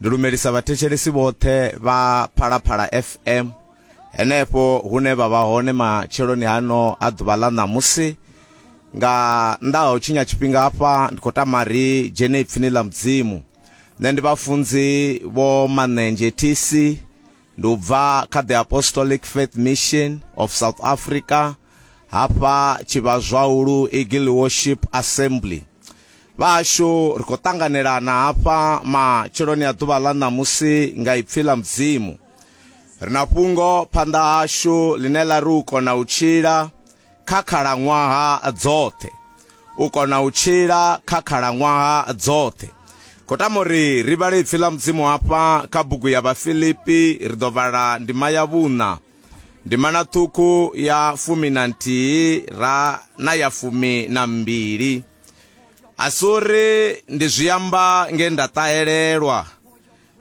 ndi lumelisa vhathetshelesi vhoṱhe vha phalaphala fm henefho hune vha vha hone matsheloni hano a ḓuvha ḽa ṋamusi nga nnḓa ha u tshinya tshifhinga hafha ndi khou tama ri dzhene ipfini ḽa mudzimu nṋe ndi vhafunzi vho manenzhe tc ndi u bva kha the apostolic faith mission of south africa Hafha Tshivhazwaulu Eagle Worship Assembly vhashu ri khou ṱanganelana hafha matsheloni a ḓuvha ḽa ṋamusi nga ipfi ḽa mudzimu ri na fhungo phanḓa hashu ḽine ḽa ri u kona u tshila kha khalaṅwaha dzoṱhe u kona u tshila kha khalaṅwaha dzoṱhe khou tama uri ri vhale ipfi ḽa mudzimu hafha kha bugu ya vhafilipi ri ḓo vhala ndima ya vhuṋa ndimana ṱhukhu ya fumi na nthihi ra na ya fumi na mbili a si uri ndi zwi amba nge nda ṱahelelwa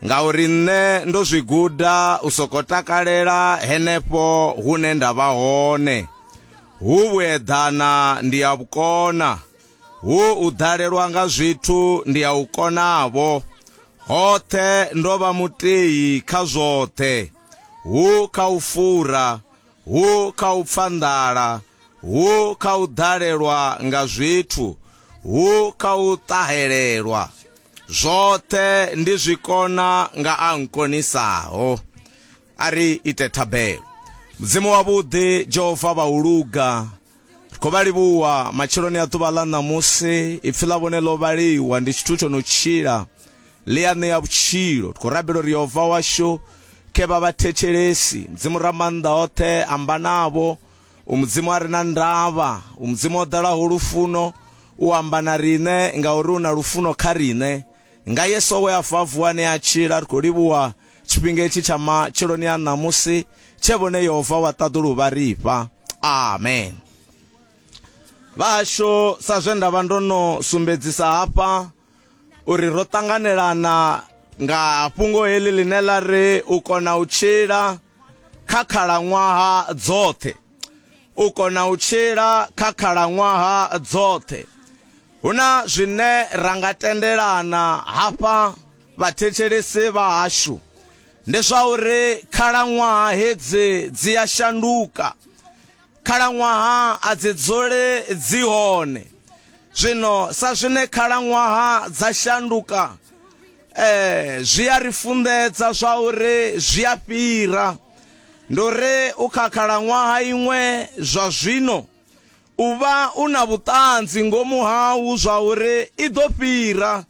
ngauri nṋe ndo zwi guda u soko takalela henefho hune nda vha hone hu vhueḓana ndi ya vhukona hu u ḓalelwa nga zwithu ndi ya u konavho hoṱhe ndo vha muteyi kha zwoṱhe hu kha u fura, hu kha u pfa nḓala, hu kha u ḓalelwa nga zwithu, hu kha u ṱahelelwa. Zwoṱhe ndi zwi kona nga a nkonisaho. A ri ite thabelo. Mudzimu wavhuḓi, Jehova vha u luga. ri khou vha livhuwa matsheloni a ḓuvha ḽa ṋamusi ipfi ḽa vhone ḽo vhaliwa ndi tshithu tsho no tshila ḽi a ṋea vhutshilo ri khou rabela uri yehova washu khe vha vhathetshelesi mudzimu ra maanḓa oṱhe amba navho u mudzimu a re na ndavha u mudzimu o ḓalaho lufuno u amba na riṋe ngauri u na lufuno kha riṋe Nga Yesu we a fa, a vuwa ane a tshila, ri khou livhuwa tshifhinga itshi tsha matsheloni a ṋamusi tshe vhone Yehova wa ṱaḓulu vha ri fha. Amen. Vhahashu, sa zwe nda vha ndo no sumbedzisa hafha uri ro ṱanganelana nga fhungo heḽi ḽine ḽa ri u kona u tshila kha khalaṅwaha dzoṱhe u kona u tshila kha khalaṅwaha dzoṱhe huna zwine ra nga tendelana hafha vhathetshelesi vha hashu ndi zwa uri khalaṅwaha hedzi dzi a shanduka khalaṅwaha a dzi dzule dzi hone zwino sa zwine khalaṅwaha dza shanduka Ee, zwi a ri funḓedza zwa uri zwi a fhira. Ndo ri u kha khalaṅwaha iṅwe zwa zwino u vha u na vhuṱanzi ngomu hau zwa uri i ḓo fhira,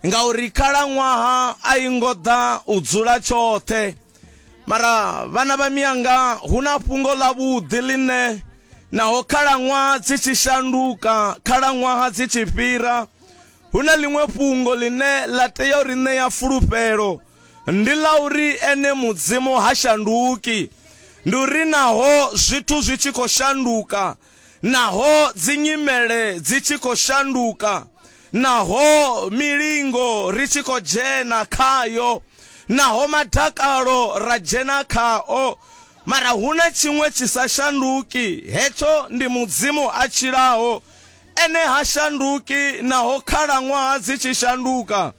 ngauri khalaṅwaha a i ngo ḓa u dzula tshoṱhe. Mara vhana vha mianga, hu na fhungo ḽa vhuḓi ḽine naho khalaṅwaha dzi tshi shanduka, khalaṅwaha dzi tshi fhira, Hu na ḽiṅwe fhungo ḽine ḽa tea u ri ṋea fulufhelo, ndi ḽa uri ene Mudzimu ha shanduki. Ndi uri naho zwithu zwi tshi khou shanduka, naho dzinyimele dzi tshi khou shanduka, naho milingo ri tshi khou dzhena khayo, naho madakalo ra dzhena khao, mara hu na tshiṅwe tshi sa shanduki, hetsho ndi Mudzimu a tshilaho. Ene ha shanduki naho khalaṅwaha dzi tshi shanduka.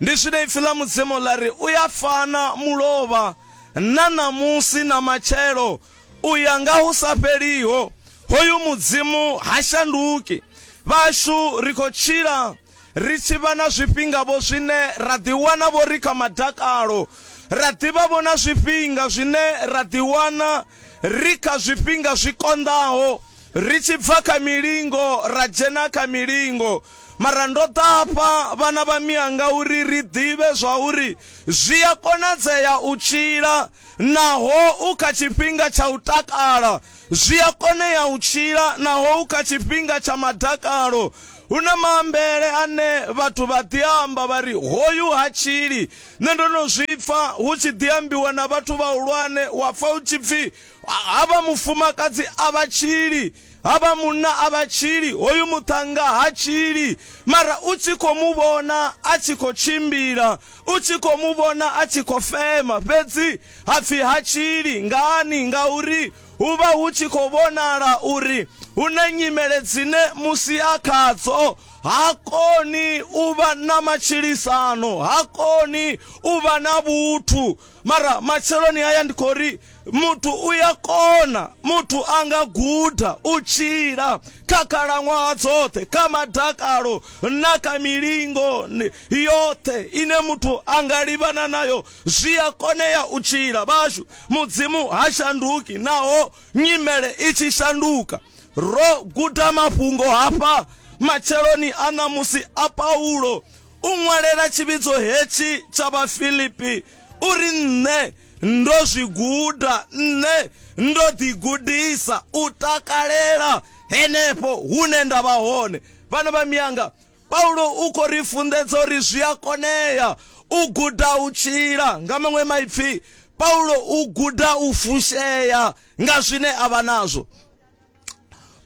Ndi zwine Ipfi ḽa Mudzimu ḽa ri, U a fana mulovha na ṋamusi na matshelo, u ya nga hu sa fheliho. Hoyu Mudzimu ha shanduki. Vhashu, ri khou tshila ri tshi vha na zwifhinga-vho zwine ra ḓiwana-vho ri kha madakalo, ra ḓivha-vho na zwifhinga zwine ra ḓiwana ri kha zwifhinga zwi konḓaho, Ri tshi bva kha milingo ra dzhena kha milingo, mara ndo ḓa hafha vhana vha mianga uri ri ḓivhe zwauri zwi a konadzea u tshila naho u kha tshifhinga tsha u takala, zwi a konea u tshila naho u kha tshifhinga tsha madakalo. Hu na maambele ane vhathu vha ḓi a amba vha ri, Hoyu ha tshili. Nṋe ndo no zwi pfa hu tshi ḓi ambiwa na vhathu vhahulwane, wa pfa hu tshi pfi, Havha mufumakadzi a vha tshili, havha munna a vha tshili, hoyu muṱhannga ha tshili. Mara u tshi khou mu vhona a tshi khou tshimbila, u tshi khou mu vhona a tshi khou fema, fhedzi ha pfi ha tshili. Ngani? Ngauri hu vha hu tshi khou vhonala uri hu na nyimele dzine musi a khadzo, ha koni u vha na matshilisano, ha koni u vha na vhuthu. mara matsheloni haya ndi khou ri muthu u ya kona muthu a nga guda u tshila kha khalaṅwaha dzoṱhe kha madakalo na kha milingo ni- yoṱhe ine muthu a nga livhana nayo zwi a konea u tshila vhashu mudzimu ha shanduki naho nyimele i tshi shanduka ro guda mafhungo hafha matsheloni a ṋamusi a paulo u ṅwalela tshivhidzo hetshi tsha Vhafilipi uri nṋe ndo zwi guda, nṋe ndo ḓi gudisa u takalela henefho hune nda vha hone. Vhana vha miyanga, Paulo u khou ri funḓedza uri zwi a konea u guda u tshila. Nga maṅwe maipfi, Paulo u guda u fushea nga zwine a vha nazwo.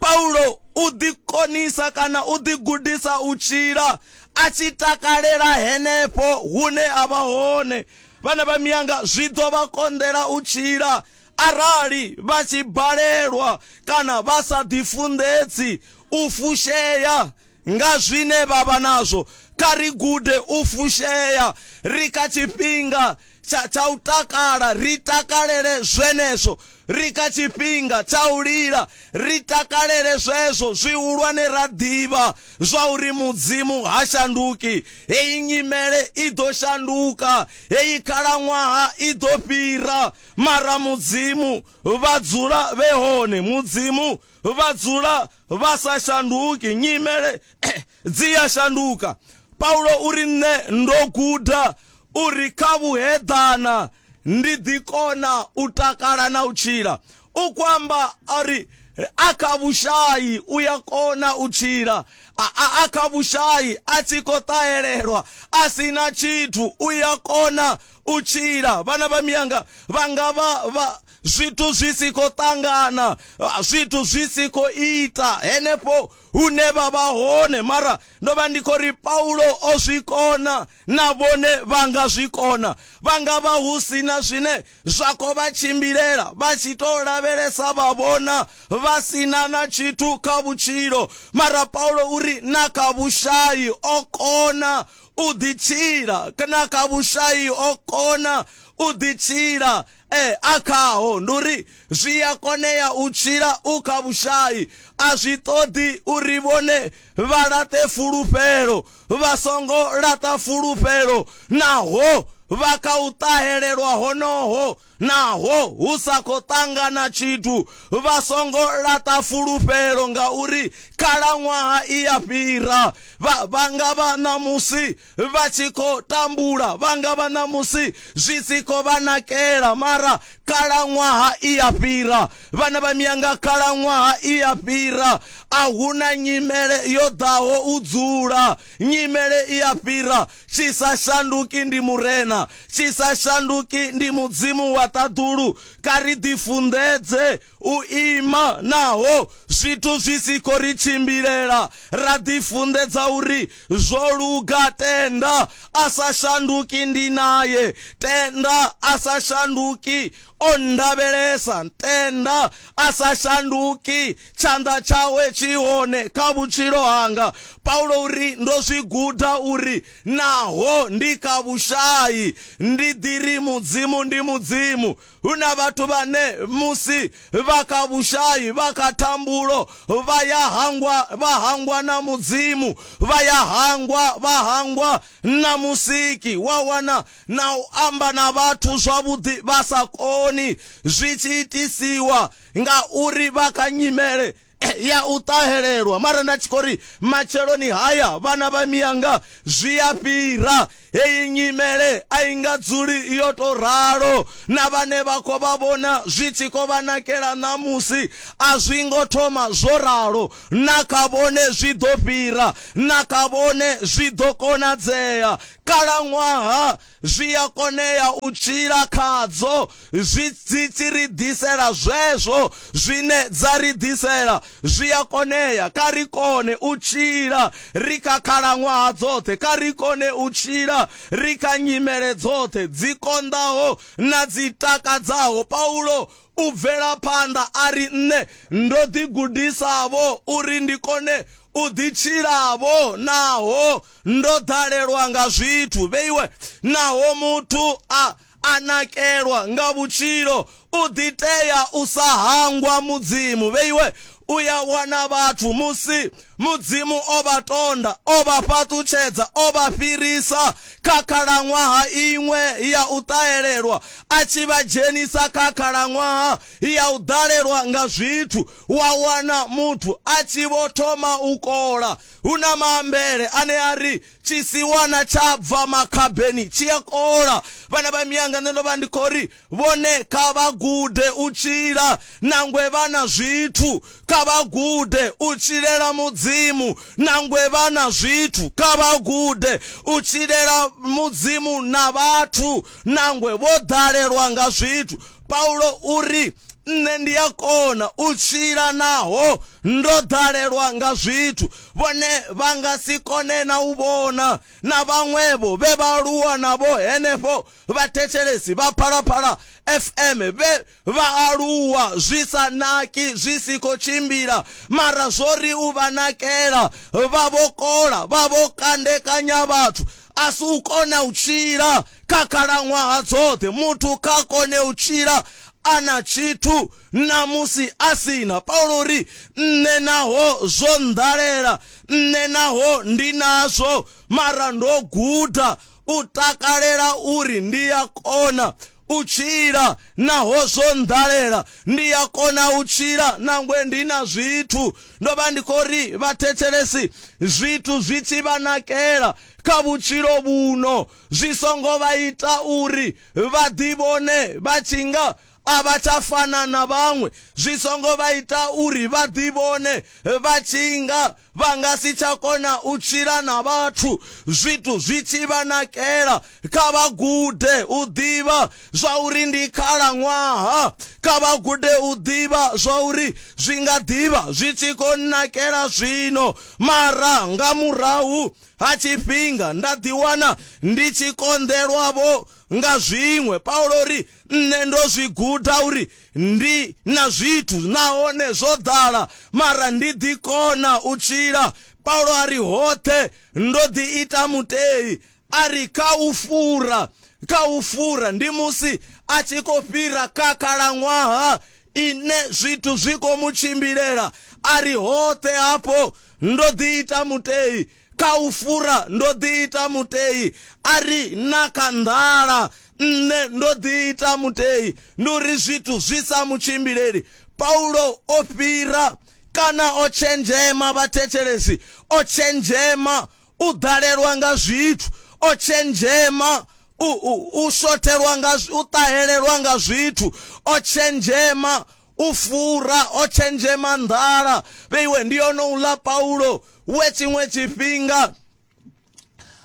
Paulo u ḓi konisa kana u ḓi gudisa u tshila a tshi takalela henefho hune a vha hone vhana vha miyanga zwi ḓo vha konḓela u tshila arali vha tshi balelwa kana vha sa ḓifunḓedzi u fushea Nga zwine vha vha nazwo, kha ri gude u fushea ri kha tshifhinga tsha, tsha u takala, ri takalele zwenezwo. Ri kha tshifhinga tsha u lila, ri takalele zwezwo zwihulwane ra ḓivha zwauri Mudzimu ha shanduki. Heyi nyimele i ḓo shanduka, heyi khalaṅwaha i ḓo fhira, mara Mudzimu vha dzula vhe hone, Mudzimu vha dzula vha sa shanduki, nyimele dzi ya shanduka. Paulo u ri, Nṋe ndo guda uri kha vhuheḓana ndi ḓi kona u takala na u tshila. U khou amba a ri, a kha vhushayi u ya kona u tshila, a kha vhushayi a tshi khou ṱahelelwa a si na tshithu u ya kona u tshila vhana vha miyanga vha nga vha vha zwithu zwi si khou ṱangana ah, zwithu zwi si khou ita henefho hune vha vha hone mara ndo vha ndi khou ri paulo o zwi kona na vhone vha nga zwi kona vha nga vha hu si na zwine zwa khou vha tshimbilela vha tshi tou lavhelesa vha vhona vha si na na tshithu kha vhutshilo mara paulo uri na kha vhushayi o kona u ḓitshila kana kha vhushai o kona u ḓitshila eh, a khaho ndi uri zwi a konea u tshila u kha vhushai a zwi ṱoḓi uri vhone vha laṱe fulufhelo vha songo laṱa fulufhelo naho vha kha u ṱahelelwa honoho Naho hu sa khou ṱangana tshithu, vha songo laṱa fulufhelo ngauri khalaṅwaha i ya fhira. Vha, vha nga vha ṋamusi vha tshi khou tambula, vha nga vha ṋamusi zwi si khou vha nakela, mara khalaṅwaha i ya fhira. Vhana vha miyanga, khalaṅwaha i ya fhira. A hu na nyimele yo ḓaho u dzula, nyimele i ya fhira. Tshi sa shanduki ndi Murena, tshi sa shanduki ndi Mudzimu wa ṱaḓulu. Kha ri ḓifunḓedze u ima naho zwithu zwi si khou ri tshimbilela, ra ḓifunḓedza uri, Zwo luga, tenda, a sa shanduki ndi nae. Tenda, a sa shanduki, o nndavhelesa. Tenda, a sa shanduki, Tshanḓa tshawe tshi hone kha vhutshilo hanga. Paulo u ri, Ndo zwi guda uri naho ndi kha vhushai ndi ḓi ri Mudzimu ndi Mudzimu. Hu na vhathu vhane musi vha kha vhushai, vha kha thambulo, vha ya hangwa, vha hangwa na Mudzimu, vha ya hangwa, vha hangwa na Musiki. Wa wana na u amba na vhathu zwavhuḓi vha sa koni, zwi tshi itisiwa ngauri vha kha nyimele ya u ṱahelelwa mara nda tshi khou ri matsheloni haya vhana vha miyanga zwi a fhira heyi nyimele a i nga dzuli yo to ralo na vhane vha khou vha vhona zwi tshi khou vha nakela ṋamusi a zwi ngo thoma zwo ralo na kha vhone zwi ḓo fhira na kha vhone zwi ḓo konadzea kalaṅwaha Zwi a konea u tshila khadzo. Zwi, dzi tshi ri ḓisela zwezwo zwine dza ri ḓisela. Zwi a konea. Kha ri kone u tshila ri kha khalaṅwaha dzoṱhe. Kha ri kone u tshila ri kha nyimele dzoṱhe, dzi konḓaho na dzi takadzaho. Paulo u bvela phanḓa a ri, Nṋe ndo ḓigudisa-vho uri ndi kone u ḓi tshila-vho naho Ndo ḓalelwa nga zwithu, vhe iwe, naho muthu a a nakelwa nga vhutshilo, u ḓi tea u sa hangwa Mudzimu, vhe iwe, u ya wana vhathu musi Mudzimu o vha tonda, o vha fhaṱutshedza, o vha fhirisa kha khalaṅwaha iṅwe ya u ṱahelelwa, a tshi vha dzhenisa kha khalaṅwaha ya u ḓalelwa nga zwithu, wa wana muthu a tshi vho thoma u kola. Hu na maambele ane a ri, Tshisiwana tsha bva makhabeni tshi a kola. Vhana vha mianga, nṋe ndo vha ndi khou ri, Vhone kha vha gude u tshila. Nangwe vha na zwithu, kha vha gude u tshilela Mudzimu. Nangwe vha na zwithu, kha vha gude u tshilela Mudzimu na vhathu. Nangwe vho ḓalelwa nga zwithu, paulo uri nṋe ndi a kona u tshila naho ndo ḓalelwa nga zwithu vhone vha nga si kone na u vhona na vhaṅwevho vhe vha aluwa navho henefho vhathetshelesi vha phalaphala fm vhe vha aluwa zwi sa naki zwi si khou tshimbila mara zwo ri u vha nakela vha vho kola vha vho kandekanya vhathu a si u kona u tshila kha khalaṅwaha dzoṱhe muthu kha kone u tshila a na tshithu na musi a sina paulo ri nṋe naho zwo nḓalela nṋe naho ndi nazwo mara ndo guda u takalela uri ndi a kona u tshila naho zwo nḓalela, ndi a kona u tshila nangwe ndi na zwithu. Ndo vha ndi khou ri vhathetshelesi zwithu zwi tshi vha nakela kha vhutshilo vhuno zwi songo vha ita uri vha ḓivhone vha tshi nga a vha tsha fana na vhaṅwe, zwi songo vha ita uri vha ḓivhone vha tshi nga Vha nga si tsha kona u tshila na vhathu zwithu zwi tshi vha nakela. Kha vha gude u ḓivha zwa uri ndi khalaṅwaha. Kha vha gude u ḓivha zwa uri zwi nga ḓi vha zwi tshi khou nnakela zwino, mara nga murahu ha tshifhinga nda ḓiwana ndi tshi konḓelwa-vho nga zwiṅwe. Paulo o ri, nṋe ndo zwi guda uri ndi na zwithu nahone zwo ḓala mara ndi ḓi kona u tshila paulo a ri hoṱhe ndo ḓi ita mutei a ri kha u fura kha u fura ndi musi a tshi khou fhira kha khalaṅwaha ine zwithu zwi khou mu tshimbilela a ri hoṱhe hafho ndo ḓi ita mutei Kha u fura ndo ḓiita mutei, a ri na kha nḓala nṋe ndo ḓiita mutei. Ndi uri zwithu zwi sa mu tshimbileli, Paulo o fhira kana o tshenzhema vhathetshelesi, o tshenzhema u ḓalelwa nga zwithu, o tshenzhema u, u, u shothelwa nga, u ṱahelelwa nga zwithu, o tshenzhema u fura, o tshenzhema nḓala. Vheiwe ndi onouḽa Paulo we tshiṅwe tshifhinga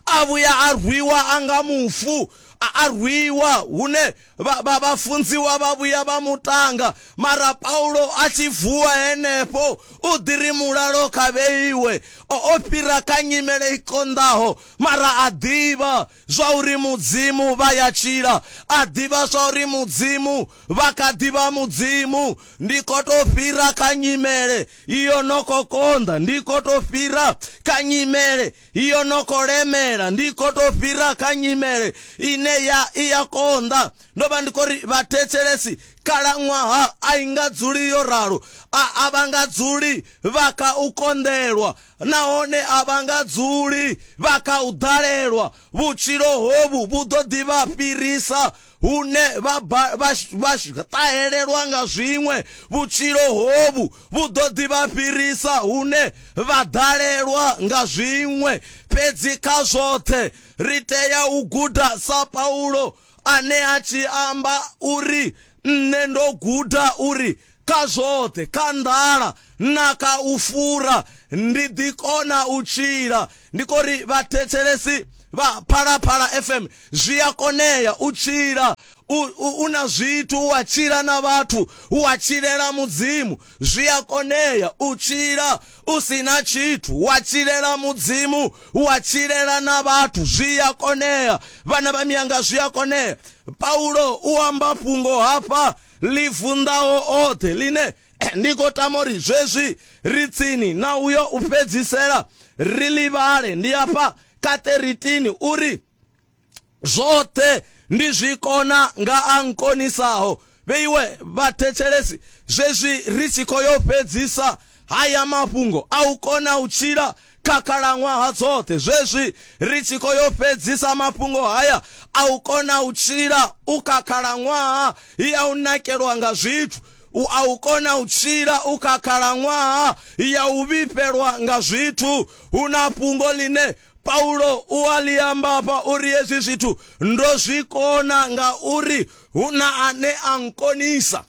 a vhuya a rwiwa a nga mufu a rwiwa hune vhafunziwa vha vhuya vha mutanga mara paulo a tshi vuwa henefho u ḓi ri mulalo kha vheiwe o fhira kha nyimele i konḓaho mara a ḓivha zwa uri Mudzimu vha ya tshila, a ḓivha zwa uri Mudzimu vha kha ḓi vha Mudzimu. Ndi khou tou fhira kha nyimele iyo no khou konḓa, ndi khou tou fhira kha nyimele iyo no khou lemela, ndi khou tou fhira kha nyimele ine ya i ya konḓa. Ndo vha ndi khou ri, Vhathetshelesi, khalaṅwaha a i nga dzuli yo ralo, a a vha nga dzuli vha kha u konḓelwa, Nahone a vha nga dzuli vha kha u ḓalelwa, vhutshilo hovhu vhu ḓo ḓi vha fhirisa, hune vha ba, vha, vha ṱahelelwa nga zwiṅwe, vhutshilo hovhu vhu ḓo ḓi vha fhirisa, hune vha ḓalelwa nga zwiṅwe. Fhedzi kha zwoṱhe ri tea u guda sa Paulo, ane a tshi amba uri, Nṋe ndo guda uri Kha zwoṱhe, kha nḓala na kha u fura, ndi ḓi kona u tshila. Ndi khou ri vhathetshelesi vha Phalaphala FM, zwi a konea u tshila u, u, u na zwithu, u a tshila na vhathu, u a tshilela Mudzimu. Zwi a konea u tshila u si na tshithu, wa tshilela Mudzimu, wa tshilela na vhathu. Zwi a konea, vhana vha mianga, zwi a konea. Paulo u amba fhungo hafha ḽi vunḓaho oṱhe ḽine ndi khou tama uri zwezwi ri tsini na uyo u fhedzisela ri ḽi vhale ndi afha kha 13 uri zwoṱhe ndi zwi kona nga a nkonisaho vheiwe vhathetshelesi zwezwi ri tshi khou yo fhedzisa haya mafhungo a u kona u tshila kha khalaṅwaha dzoṱhe zwezwi ri tshi khou yo fhedzisa mafhungo haya a u kona u tshila u kha khalaṅwaha ya u nakelwa nga zwithu u a u kona u tshila u kha khalaṅwaha ya u vhifhelwa nga zwithu hu na fhungo ḽine paulo u a ḽi amba fha uri hezwi zwithu ndo zwi kona nga uri hu na ane a nkonisa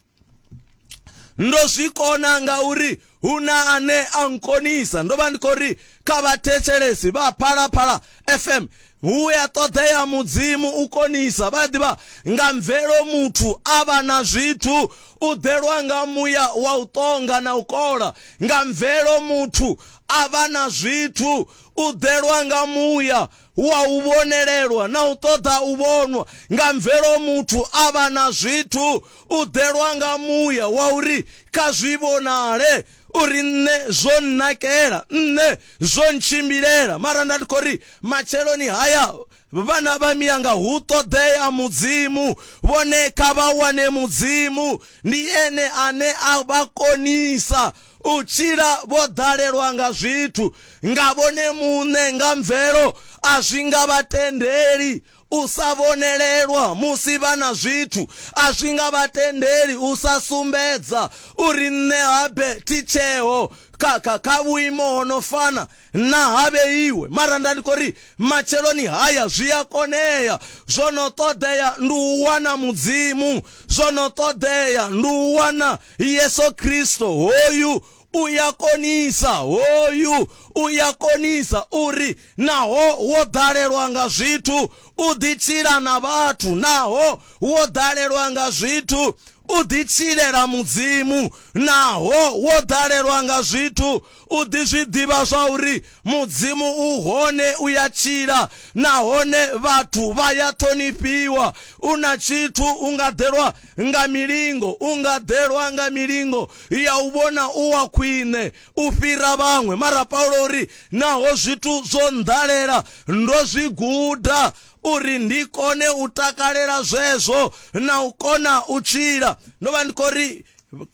ndo zwi kona ngauri hu na ane a nkonisa ndo vha ndi khou ri kha vhathetshelesi vha phalaphala fm hu ya ṱoḓea mudzimu u konisa vha ḓivha nga mvelo muthu a vha na zwithu u ḓelwa nga muya wa u ṱonga na u kola nga mvelo muthu a vha na zwithu u ḓelwa nga muya hu a u vhonelelwa na u ṱoḓa u vhonwa nga mvelo muthu a vha na zwithu u ḓelwa nga muya wa uri kha zwi vhonale uri nṋe zwo nnakela nṋe zwo ntshimbilela mara nda ndi khou ri matsheloni haya vhana vha miyanga hu ṱoḓea mudzimu vhone kha vha wane mudzimu ndi ene ane a vha konisa u tshila vho ḓalelwa nga zwithu nga vhone muṋe nga mvelo, a zwi nga vha tendeli u sa vhonelelwa musi vha na zwithu, a zwi nga vha tendeli u sa sumbedza uri nṋe habe thi tsheho kha, kha, kha vhuimo ho no fana. Nṋa ha vheiwe, mara nda ndi khou ri matsheloni haya zwi a konea. Zwo no ṱoḓea ndi u wana Mudzimu, zwo no ṱoḓea ndi u wana Yesu Kristo. Hoyu u ya konisa, hoyu u ya konisa uri naho wo ḓalelwa nga zwithu, u ḓi tshila na vhathu, naho wo ḓalelwa nga zwithu, u ḓi tshilela Mudzimu, naho wo ḓalelwa nga zwithu, U ḓi zwi ḓivha zwa uri Mudzimu u hone, u ya tshila, nahone vhathu vha ya ṱhonifhiwa. U na tshithu, u nga ḓelwa nga milingo, u nga ḓelwa nga milingo ya u vhona u wa khwine u fhira vhaṅwe. Mara Paulo u ri, Naho zwithu zwo nnḓalela, ndo zwi guda uri ndi kone u takalela zwezwo na u kona u tshila. Ndo vha ndi khou ri,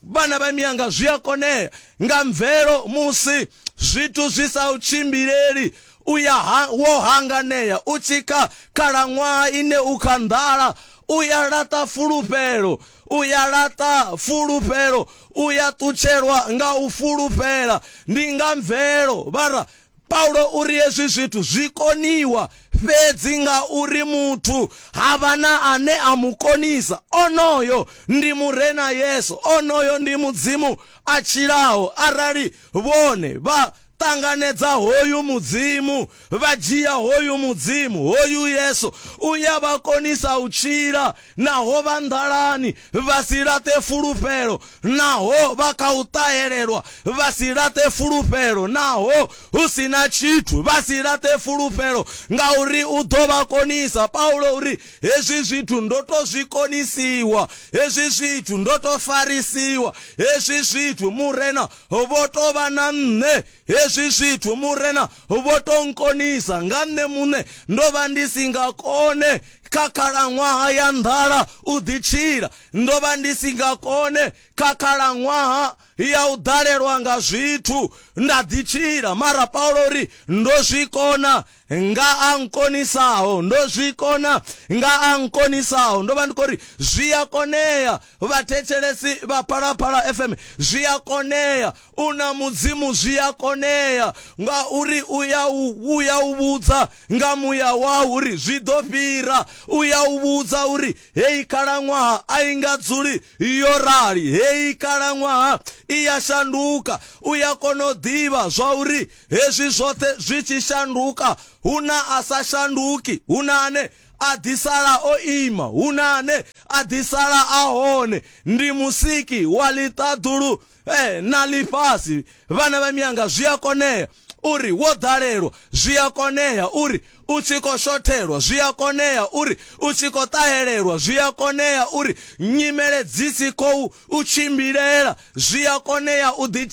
vhana vha miyanga zwi a konea nga mvelo musi zwithu zwi sa u tshimbileli u ya ha, wo hanganea u tshi kha khalaṅwaha ine u kha nḓala u ya laṱa fulufhelo u ya laṱa fulufhelo u ya ṱutshelwa nga u fulufhela ndi nga mvelo vhara Paulo u ri hezwi zwithu zwi koniwa fhedzi nga uri muthu ha vha na ane a mu konisa. Onoyo ndi Murena Yesu. Onoyo ndi Mudzimu a tshilaho. Arali vhone vha ṱanganedza hoyu Mudzimu, vha dzhia hoyu Mudzimu, hoyu Yesu, u ya vha konisa u tshila. Naho vha nḓalani vha si laṱe fulufhelo, naho vha kha u ṱahelelwa vha si laṱe fulufhelo, naho hu si na tshithu vha si laṱe fulufhelo, ngauri u ḓo vha konisa. Paulo u ri, Hezwi zwithu ndo tou zwi konisiwa, hezwi zwithu ndo tou farisiwa, hezwi zwithu Murena vho tou vha na nṋe, hezwi zwithu Murena vho tou nkonisa, nga nṋe muṋe ndo vha ndi si nga kone. kha khalaṅwaha ya nḓala u ḓi tshila. Ndo vha ndi si nga kone kha khalaṅwaha ya u ḓalelwa nga zwithu nda ḓi tshila, mara Paulo ri ndo zwi kona nga a nkonisaho, ndo zwi kona nga a nkonisaho. Ndo vha ndi khou ri zwi a konea, vhathetshelesi vha Phalaphala FM, zwi a konea U na Mudzimu zwi a konea, ngauri u ya u, u ya u vhudza nga muya wau uri zwi ḓo fhira. U ya u vhudza uri heyi khalaṅwaha a i nga dzuli yo rali, heyi khalaṅwaha i ya shanduka. U ya kona u ḓivha zwa uri hezwi zwoṱhe zwi tshi shanduka, hu na a sa shanduki, hu na ane a ḓi sala o ima, hu na ane a ḓi sala a hone. Ndi Musiki wa ḽiṱaḓulu Ee, na ḽifhasi vhana vha mianga zwi a konea uri wo ḓalelwa zwi a konea uri u tshi khou shothelwa zwi a konea uri u tshi khou ṱahelelwa zwi a konea uri nyimele dzi si khou u tshimbilela zwi a konea u ḓi